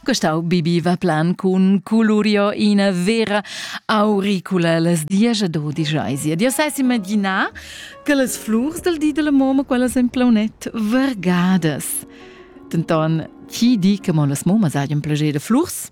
Gustau bibiva plan cun culurio ina vera auricula las dies ed odischais. Ed io sai imaginar che las flurs del di della moma, quellas en plaunet, vargadas. Denton, chi di che mo las momas hajan plager de flurs?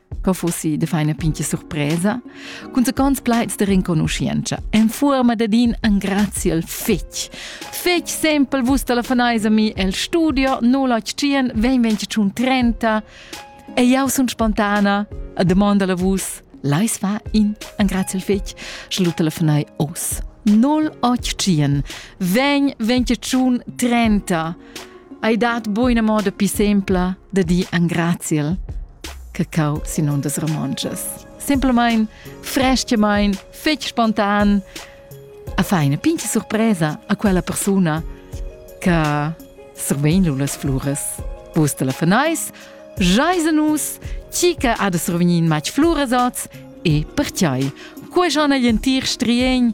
Co fussi de feina pinche surpresa? Cun secons plaids de renconuscienza, en fuorma dad in engraziel fetg. Fetg sempel vus telefoneis a mi el studio 081 20 30 e jau sun spontana a domanda la vus Leis fa in engraziel fetg, sche lu telefonai os. 081 20 30 Ei dat buina moda pi sempla da dir angraziel che cau sin undas romontschas. Simplamain, frestgemain, fetg spontan, a fa ina pinche surpresa a quella persuna che survegn lu las fluras. Vus te la fanais, jais a nus, chi che ha da survegnir in matg fluras oz e perciai. Quei schon egl entir striegn